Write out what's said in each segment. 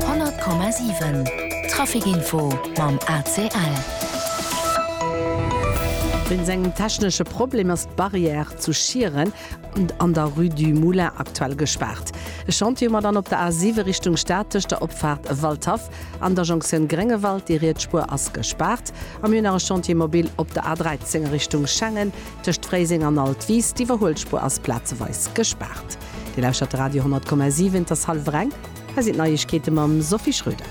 100,7 Traficinfo mam ACL. Wéinst engem technesche Problem ass d'Barrière zu Schieren an der Rue du Moulin aktuell gespaart. E Chantier hu mer dann op der A7 Richtung Stad tëscht der Opfaart Waldhaff an der Jonktioun Gréngewald. Déi riets Spuer ass gespaart. A mir hunn nach e Chantier mobile op der A13 Richtung Schengen tëscht Fréiseng an Altwis. D'Iwwerhuelspur ass plazeweis gespaart. Dir lauschtert de Radio 10,7, et ass hallwer eng, hei sinn d'Neiegkeete mam Sophie Schröder.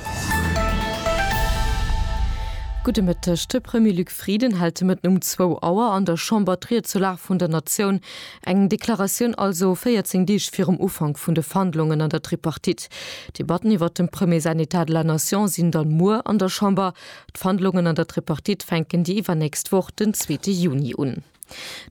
Gudde Mëtteg. De Premier Luc Frieden hält de Mëtten um zwou Auer an der Chamber d'Ried zur Lag vun der Natioun. Eng Deklaratioun also 14 Deeg virum Ufank vun de Verhandlungen an der Tripartite. D'Debatten iwwert dem Premier säin Etat de la Nation sinn dann muer an der Chamber. D'Verhandlungen an der Tripartite fänken déi iwwernächst Woch den zweete Juni un.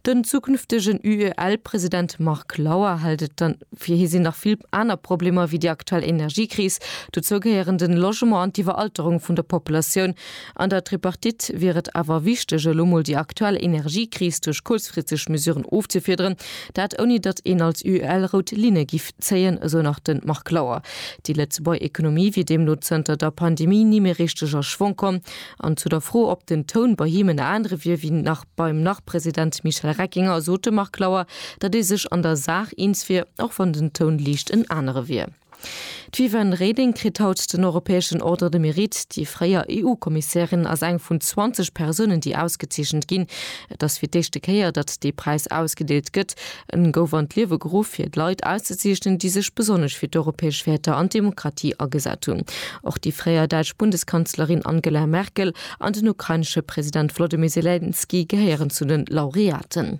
Den zukünftegen UEL-President Marc Lauer hält et dann, fir hie sinn nach vill aner Problemer ewéi déi aktuell Energiekris. Dozou gehéieren den Logement an d'Iwweralterung vun der Populatioun. An der Tripartite wier et awer wichteg, elo mol déi aktuell Energiekris duerch kuerzfristeg Mesuren ofzefiederen. Dat ouni datt een als UEL rout Linne giff zéien, esou nach de Marc Lauer. Déi Lëtzebuerger Ekonomie wier deemno zënter der Pandemie ni méi richteg a Schwong komm. An zu der Fro, ob den Toun bei him en anere wier ewéi nach, Beim Nach-President Michel Reckinger sot de Marc Lauer, datt ee sech an der Saach eens wier, och wann den Toun liicht en anere wier. D'Viviane Reding kritt haut den europäeschen Ordre de Mérite. Déi fréier EU-Kommissärin ass eng vun 20 Persounen, déi ausgezeechent ginn. Et ass fir d'éischte Kéier, datt dee Präis ausgedeelt gëtt. E gouf an d'Liewe geruff, fir Leit auszezeechnen, déi sech besonnesch fir d'europäesch Wäerter an d'Demokratie agesat hunn. Och déi fréier däitsch Bundeskanzlerin Angela Merkel an den ukrainesche President Wolodymyr Selenskyj gehéieren zu de Laureaten.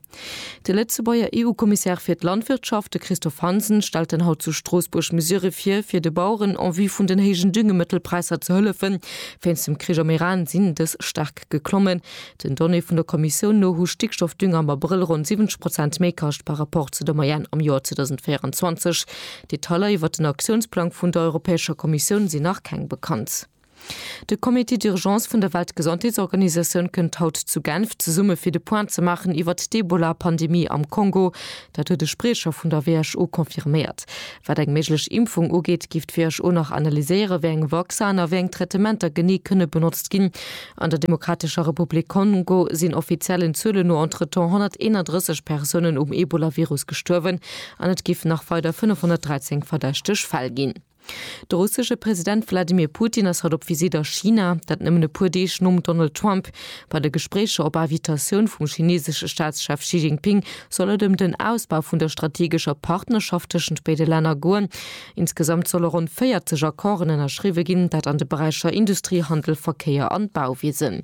De Lëtzebuerger EU-Kommissär fir d'Landwirtschaft, de Christophe Hansen, stellt dann haut zu Stroossbuerg Mesurë vir, fir de Baueren en vue vun den héijen Düngemëttelpräisser ze hëllefen. Wéinst dem Krich am Iran sinn dës staark geklommen. Den Donnéeë vun der Kommissioun no hu Stickstoffdünger am Abrëll ronn 70 Prozent méi kascht par Rapport zu der Moyenne am Joer 2024. Detailer iwwert den Aktiounsplang vun der Europäescher Kommissioun sinn nach keng bekannt. De Comité d'urgence vun der Weltgesondheetsorganisatioun kënnt haut zu Genf zesumme fir de Point ze maachen iwwert d'Ebola-Pandemie am Kongo. Dat huet e Spriecher vun der WHO confirméiert. Wat eng méiglech Impfung ugeet, géif d'WHO nach analyséieren, wéi eng Vaccinen a wéi eng Traitementer genee kënne benotzt ginn. An der Demokratescher Republik Kongo sinn offiziellen Zuelen no entretemps 131 Persounen um Ebolavirus gestuerwen an et géifen nach weider 513 verdächteg Fäll ginn. De russesche President Wladimir Putin ass haut op Visitt a China. Dat nëmmen e puer Deeg nom Donald Trump. Bei de Gespréicher op Invitatioun vum chinesesche Staatschef Xi Jinping soll et ëm den Ausbau vun der strategescher Partnerschaft tëschent béide Länner goen. Insgesamt solle ronn 40 Accorden ënnerschriwwe ginn, dat an de Beräicher Industrie, Handel, Verkéier an Bauwiesen.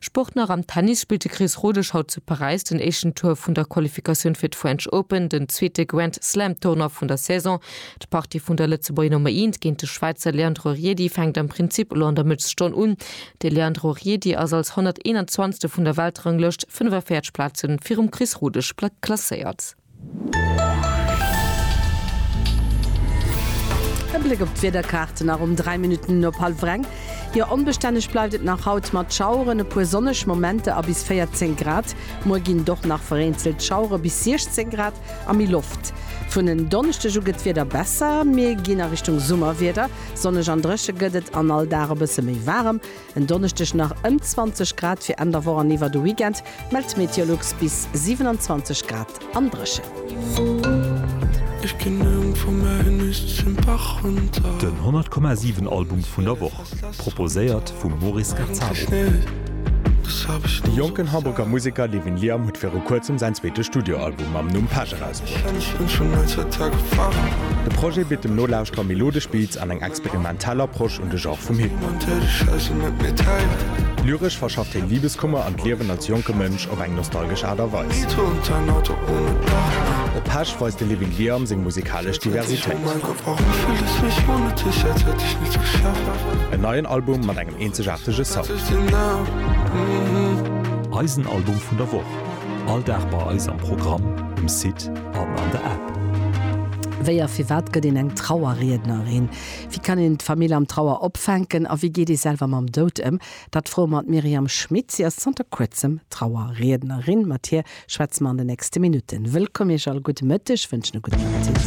Sport nach am Tennis spillt de Chris Rodesch haut zu Paräis den éischten Tour vun der Qualifikatioun fir d'French Open, den zweete Grand Slam Tournoi vun der Saison. D'Partie vun der Lëtzebuerger Nummer Eent géint de Schwäizer Leandro Riedi fänkt am Prinzip elo an der Mëttesstonn un. De Leandro Riedi ass als 121. vun der Weltranglëscht 45 Plaze virum Chris Rodesch klasséiert. E Bléck op d'Wiederkaarte nach um 3 Minutten no hallwer eng. Jo, onbestänneg bleift et nach haut mat Schaueren, e puer sonneg Momenter a bis 14 Grad. Muer ginn et och nach vereenzelt Schauere bis 16 Grad a méi Loft. Vun en Donneschdeg u gëtt d'Wieder besser, mir ginn a Richtung Summerwieder. Sonneg an dréche gëtt et an all Dag e bësse méi waarem. En Donneschdeg nach ëm 20 Grad, fir Enn der Woch an iwwer de Weekend mellt d'Meteolux bis 27 Grad an dréchen. Den 100 Komma 7 Album vun der Woch, proposéiert vum Maurice Gazzaro. De jonken Hamburger Museker Levin Liam huet viru kuerzem säin zweete Studioalbum mam Numm Passion. Präis. De Projet bitt dem Nolauschterer melodesch Beats an eng experimentell Approche un de Genre vum Hip-Hop. Lyresch verschafft hien Libeskummer an d'Liewen als jonke Mënsch op eng nostalgesch Aart a Weis. Op Pesch weist de Living Liam seng musikalesch Diversitéit. En neien Album mat engem eenzegaartege Sound. Eisen Album vun der Woch. All Dag bei eis am Programm, um Site an an der App. Wéi a firwat gëtt een eng Trauerriednerin? Wéi kann een d'Famill am Trauer opfänken? A wéi geet ee selwer mam Doud ëm? Dat froe mer d'Myriam Schmit. Si ass zanter kuerzem Trauerriednerin. Mat hir schwätze mer an den nächste Minutten. Wëllkomm Iech all, gudde Mëtteg, wënschen e gudden Appetit.